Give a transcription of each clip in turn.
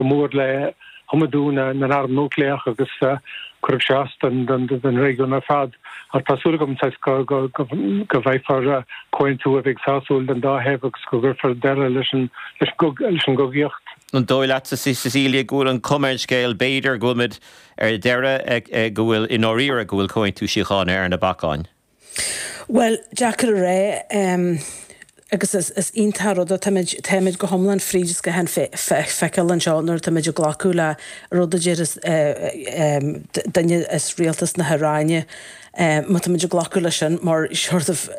go mór le hiomadú na n-arm núicléach agus chuirfeadh sé as don réigiún ar fad. Ach tá súil agam go bhfaighfear comhaontú a bheidh sásúil don dá thaobh agus go gcuirfear deireadh leis an gcogaíocht. An dóigh leat, a Cecilia, go bhfuil an chuma ar an scéal, b'fhéidir, go bhfuilimid ar deireadh, go bhfuil, i ndáiríre, go bhfuil Comhaontú Síochána ar na bacáin? Bhuel, deacair a rá. Agus is iontach an rud é, táimid, táimid go hiomlán fríd an scáthán feiceála anseo nuair atáimid ag glacadh le rud a deir duine as rialtas na hIaráine, má táimid ag glacadh leis sin mar sort of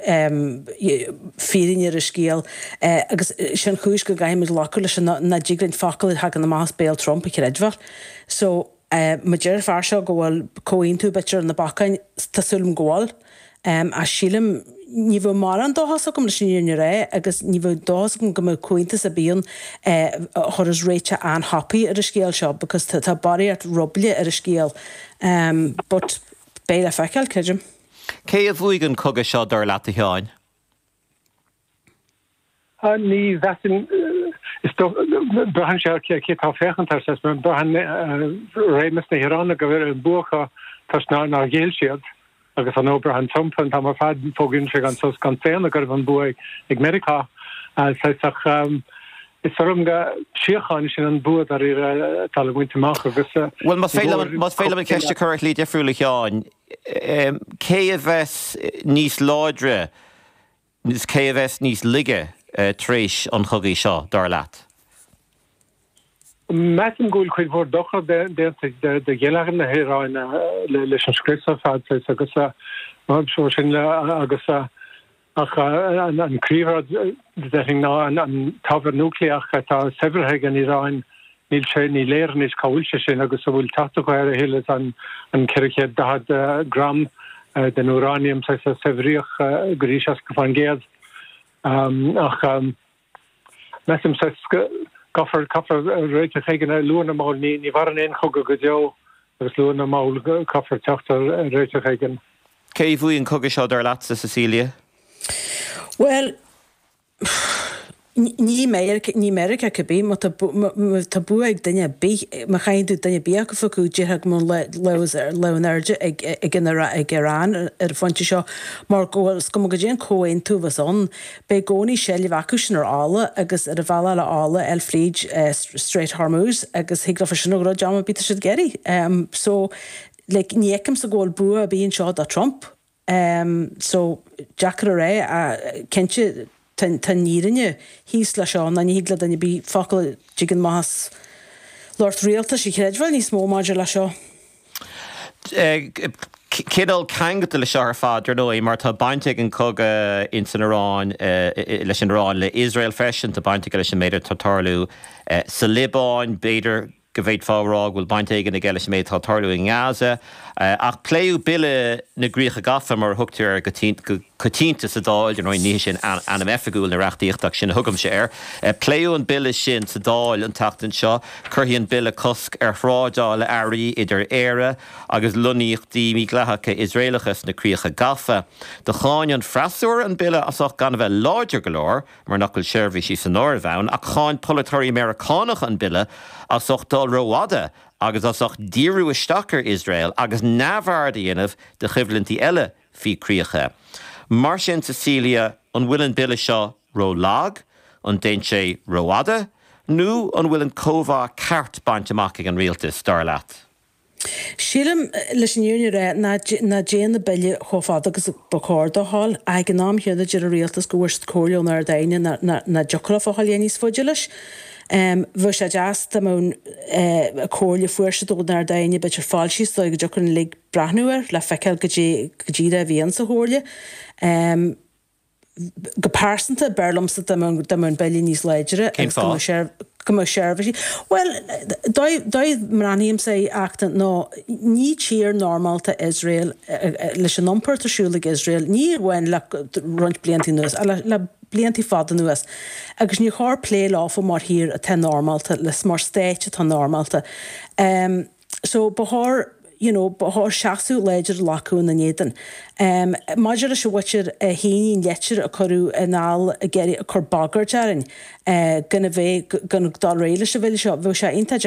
fírinne ar an scéal. Agus sé an chúis go gcaithfimid glacadh leis sin ná ní dtig linn focal a thagann amach as béal Trump a chreidbheáil. So. Má deir an fear seo go bhfuil comhaontú b'fhéidir ar na bacáin, tá súil agam go bhfuil, ach sílim, ní bheadh mórán dóchas agam leis an fhírinne a rá agus ní bheadh dóchas agam go mbeadh comhaontú ar bith ann a chuirfeadh réiteach an-happy ar an scéal seo because tá barraíocht ruball ar an scéal but beidh le feiceáil, creidim. Cé a bhuaigh an cogadh seo dar leat a Sheáin? Ní mheasaim. Is dócha, braitheann sé ar cé atá ag féachaint air, seans, mar braitheann réimeas na hIaráine go bhfuil an bua acu toisc nár ghéill siad agus ar ndóigh braitheann Trump an t-am ar fad, fógraíonn sé gan sos gan staonadh go raibh an bua ag Meiriceá. Is dóigh liom gur síocháin, sin an bua dáiríre atá le baint amach agus. Bhuel, más féidir liom an cheist a chur ar shlí dhifriúil a Sheáin, cé a bheas níos láidre agus cé a bheas níos laige tar éis an chogaidh seo, dar leat? Measaim go bhfuil cuid mhór dochair déanta do gheilleagar na hIaráine leis an scrios ar fad agus mar sin agus Ach an príomhrud, déarfainn, ná an t-ábhar núicléach atá saibhrithe ag an Iaráin, níl sé, ní léir anois cá bhfuil sé sin agus an bhfuil teacht acu air a thuilleadh an 440 gram den úráiniam a saibhríodh go dtí 60%. Ach. Measaim sa gcaithfear réiteach éigin air luath nó mall. Ní mhaireann aon chogadh go deo agus luath nó mall. Caithfear teacht ar réiteach éigin. Cé a bhuaigh an cogadh seo dar leatsa, Cecilia? Bhuel, ní Meiriceá, ní Meiriceá cibé, má tá, tá bua ag duine ar bith, má chaitheann tú duine ar bith a phiocadh, déarfá go mbíonn lámh in airde ag, ag an, ag an Iaráin ar an phointe seo, mar go bhfuil, is cuma goidé an comhaontú a bheas ann, Beidh i gcónaí seilbh acusan ar fhalla agus ar an bhealach fhalla eile fríd Strait Hormuz agus thig leofa sin a dhruid am ar bith atá siad ag iarraidh. So like ní fheicimse go bhfuil bua ar bith anseo do Trump. So deacair a rá ach cinnte tá an fhírinne thíos leis seo ná ní thig le duine ar bith focal a dtigeann amach as lucht rialtais a chreidbheáil níos mó maidir leis seo. Cineál ceangailte le seo ar fad, ar ndóigh, mar tá baint ag an cogadh ins an Iaráin leis an Iaráin, le Iosrael freisin, tá baint aige leis an méid atá ag tarlú sa Liobáin, b'fhéidir go bhféadfá a rá go bhfuil baint éigin aige leis an méid atá ag tarlú i nGaza, ach pléadh Bille na gCríocha Gafa, mar a thugtar air, go coitianta sa Dáil, ar ndóigh, ní hé sin ainm oifigiúil na reachtaíochta ach sin a thugaimse air, pléadh an Bille sin sa Dáil an tseachtain seo. Cuirfidh an bille cosc ar thrádáil earraí idir Éire agus lonnaíochtaí mídhleathacha Iosraelacha sna Críocha Gafa. Do cháin an freasúra an bille as ucht gan a bheith láidir go leor, mar nach bhfuil seirbhísí san áireamh ann, ach cháin polaiteoirí Meiriceánacha an bille as ucht dul rófhada agus as ucht díriú isteach ar Iosrael agus neamhaird a dhéanamh de choimhlintí eile faoi chríocha mar sin. Cecilia, An bhfuil an bille seo ró-lag, an dtéann sé rófhada nó an bhfuil an cóimheá ceart bainte amach ag an Rialtas, dar leat? Sílim, leis an fhírinne a rá, nach dtéann an bille chomh fada agus ba chóir dó a ghabháil, ach ag an am chéanna deir an Rialtas go bhfuair siad comhairle ón Ard Aighne nach dtiocfadh leofa a ghabháil níos faide leis. Bheadh sé deas dá mbeadh an comhairle a fuair siad ón Ard Aighne, b'fhéidir, foilsithe sa dóigh go dtiocfadh linn uilig breathnú air le feiceáil cad é a bhí ins an chomhairle. Go pearsanta, b'fhearr liomsa dá mbeadh an Bille níos láidre agus go mbeadh seirbhísí, bhuel, dóigh mbreathnaím é ach nó ní tír normálta Iosrael leis an iompar atá ar siúl ag Iosrael, ní amháin le roinnt blianta anuas ach le blianta fada anuas agus níor chóir plé leofa mar thír atá normálta, mar stáit atá normálta. so ba chóir you know ba chóir seasamh láidir a ghlacadh ina n-éadan. Maidir leis an mhuintir a shínigh an litir a cuireadh anall ag iarraidh cur bagairt orainn gan a bheith gan dul ar aghaidh leis an bhille seo, bheadh sé iontach.